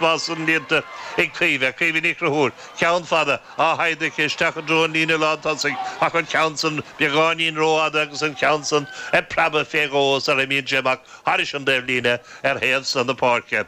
Spás san líonta ag Caoimhe. Caoimhe Ní Chruthúir, ceann fada, á shaighdeadh aici isteach i dtreo an líne lán tosaigh ach an ceann san beagáinín rófhada agus an ceann san ag preabadh fé dhó sar a imíonn sé amach thairis an dtaobhlíne ar thaobh san na páirce,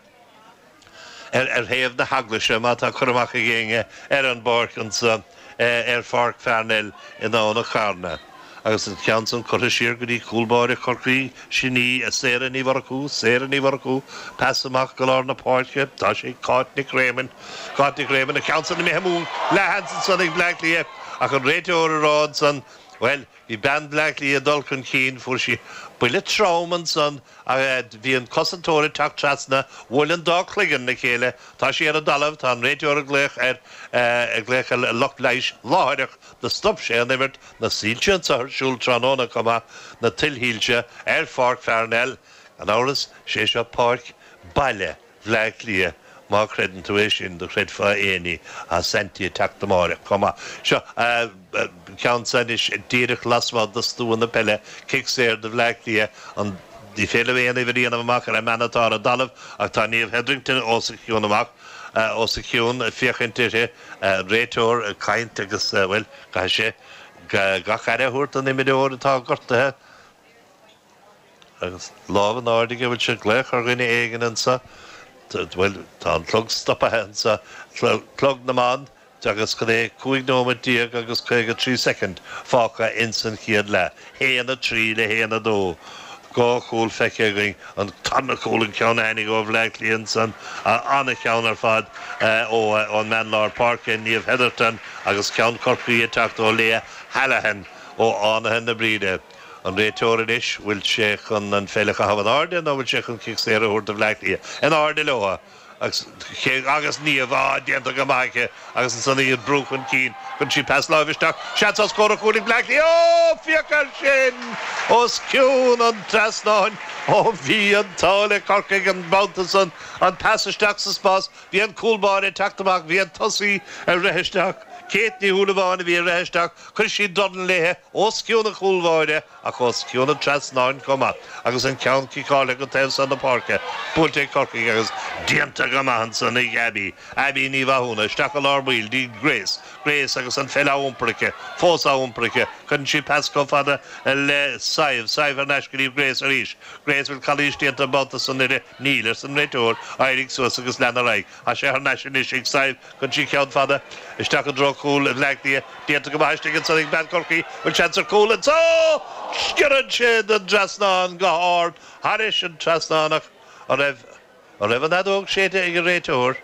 ar thaobh na heaglaise má tá cur amach ag éinne ar an bpáirc anso. ar Pháirc Pharnell i nDomhnach Cearna agus an ceann san curtha siar go dtí cúl báire Chorcaí, sin í Sarah Ní Mhurchú, Sarah Ní Mhurchú, pas amach go lár na páirce, tá sé ag Cáit Nic Réamoinn, Cáit Nic Réamoinn, an ceann san imithe amú leathsheans ansan ag Bleá Cliath ach an réiteoir ag rá ansan, bhuel, Bhí bean Bhleá Cliath ag dul chun cinn. Fuair sí buille trom ansan agus fhaid a bhí an cosantóir ag teacht trasna bhuail an dá cloigeann le chéile. Tá sí ar an dtalamh. Tá an réiteoir ag glaoch ar ag glaoch ar lucht leighis láithreach. Do stop sé an imirt. Na soilse anso ar siúl tráthnóna chomh maith. Na tuilshoilse ar Pháirc Pharnell. Gan amhras, 'sé seo páirc baile Bhleá Cliath, má chreideann tú é sin, do chreidfeá éinní tá Saintí ag teacht amáireach chomh maith. Seo ceann so anois, díreach lasmuigh do stua na peile, cic saor do Bhleá Cliath, an Ní féidir aon uimhir a dhéanamh amach ar an mbean atá ar an dtalamh ach tá Niamh Hetherington os a cionn amach, os a cionn ag féachaint uirthi, an réiteoir ag caint agus, bhuel, caithfidh sé gach aire a thabhairt don imreoir atá gortaithe. Agus lámh in airde aige, bhfuil sé ag glaoch ar dhuine éigin anso? Bhuel, tá an clog stoptha anso, clog na mban, agus cad é, cúig nóiméad déag agus caoga trí soicind fágtha ins an chéad leath. Haon a trí le haon a dó. Dhá chúl feicthe againn, an tarna cúl an ceann a tháinig ó Bhleá Cliath ansan, an-cheann ar fad ón mbean lár páirce, Niamh Hetherton, agus ceann Chorcaí ag teacht ó Leah Hallihan ó Fhánaithe na Bríde. An réiteoir anois, bhfuil sé chun an pheil a chaitheamh in airde nó bhfuil sé chun cic saor a thabhairt do Bhleá Cliath? In airde leo agus cé agus Niamh, á, déanta go maith aici agus ansan í ag brú chun cinn cuireann sí pas láimhe isteach. Seans ar scór, ar chúl ag Bleá Cliath ó féach air sin os cionn an trasnáin ó bhí an t-ádh le Corcaigh an babhta san an pas isteach sa spás Bhí an cúl báire ag teacht amach, bhí an tosaí ag rith isteach. Kate Ní Shúilleabháin a bhí ag rith isteach, chuir sí dorn léithe os cionn an chúl bháire ach os cionn an trasnáin chomh maith agus an ceann ciceáilte go taobh san na páirce, buailte ag Corcaigh agus déanta go maith ansan ag Abby, Abby Ní Mhathúna, isteach i lár baill, go dtí Grace, Grace agus an pheil á iompar aici, fós á iompar aici, cuireann sí pas chomh fada le Sadhbh, Sadhbh thar n-ais go dtí Grace arís, Grace, bhfuil calaois déanta an babhta san uirthi? Níl, arsa an réiteoir. Éirigh suas agus lean ar aghaidh. Tá sé thar n-ais anois ag Síle chuir sí ceann fada. Isteach i dtreo chúl Bhleá Cliath. Déanta go maith istigh ansan ag bean Chorcaí. Bhfuil seans ar cúl anso? Sciorrann sé den trasnán go hard thairis an trasnán ach an raibh. An raibh an fheadóg séidte ag an réiteoir?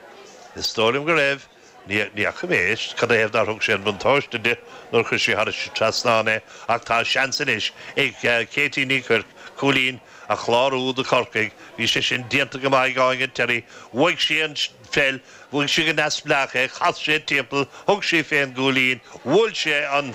Is dóigh liom go raibh. Ní fhaca mé anois cad 'n-a thaobh nár thug sé an buntáiste di nuair a chuir sí thairis sa trasnán é ach tá seans anois ag Katie Ní Chuirc cúilín a chlárú do Chorcaigh. Bhí sé sin déanta go maith ag Áine Terry. Bhuaigh sí an pheil, bhuaigh sí go neamhspleách é, chas sí timpeall, thug sí fén gcúilín, bhuail sé an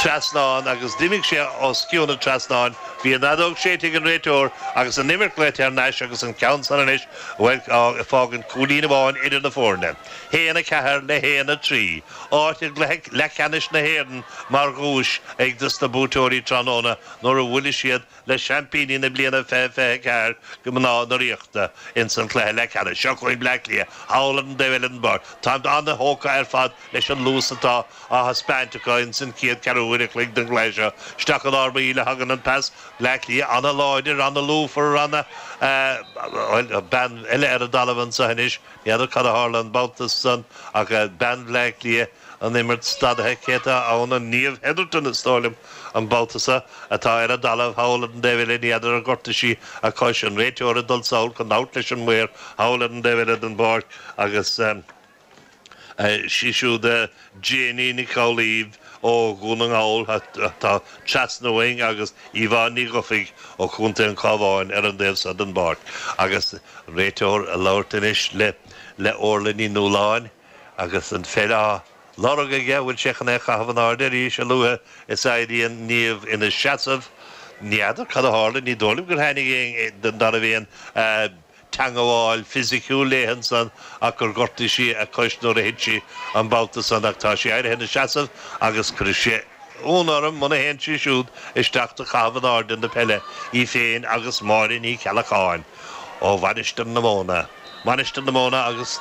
trasnán agus d'imigh sé os cionn an trasnáin. Bhí an fheadóg séidte ag an réiteoir agus an imirt glaoite thar n-ais agus an ceann san anois. Bhuel, fágann cúilín amháin idir na foirne, haon a ceathair le haon a trí, áit i gcluiche leathcheannais na hÉireann mar dhuais ag dos na buaiteoirí tráthnóna nuair a bhuailfidh siad le seaimpíní na bliana 2024, mná na Ríochta. Ins an chluiche leathcheannais seo chugainn, Bleá Cliath thall ar an dtaobh eile den bpáirc. Táimid ana-thógtha ar fad leis an luas atá á thaispeáint acu ins an chéad cheathrú uaire chloig den gcluiche seo. Isteach i lár baill a thagann an pas. Bleá Cliath an-láidir, an-lúfar, an, eh, bhuel, bean eile ar an dtalamh anseo anois, ní fheadar cad a tharla an babhta san ach, eh, bean Bhleá Cliath an imirt stadaithe céanna ann, Niamh Hetherton is dóigh liom an babhta so, atá ar an dtalamh thall ar an dtaobh eile, ní fheadar ar ghortaigh sí a cois, an réiteoir ag dul sall chun labhairt leis an maor thall ar an dtaobh eile den bpáirc agus, eh. Sí siúd Siobhán Nic Giolla Chomhaill ó Dhún na nGall atá trasna uainn agus Yvonne Ní Dhufaigh ó Chontae an Chabháin ar an dtaobh seo den bpáirc agus réiteoir ag labhairt anois le Órla Ní Nualláin agus an pheil á lorg aige, an bhfuil sé chun é a chaitheamh in airde arís a luaithe is a éiríonn Niamh ina seasamh. N'fheadar cad a tharla, ní dóigh liom gur tháinig aoinne den dá bhuíon. teangmháil fisiciúil léi ansan ach gur ghortaigh sí a cois nuair a thit sí an babhta san ach tá sí éirithe ina seasamh agus cuirfidh sé ionadh orm muna théann sí siúd isteach do chaitheamh in airde na peile, í féin agus Máire Ní Cheallacháin ó Mhainistir na Móna, Mainistir na Móna agus.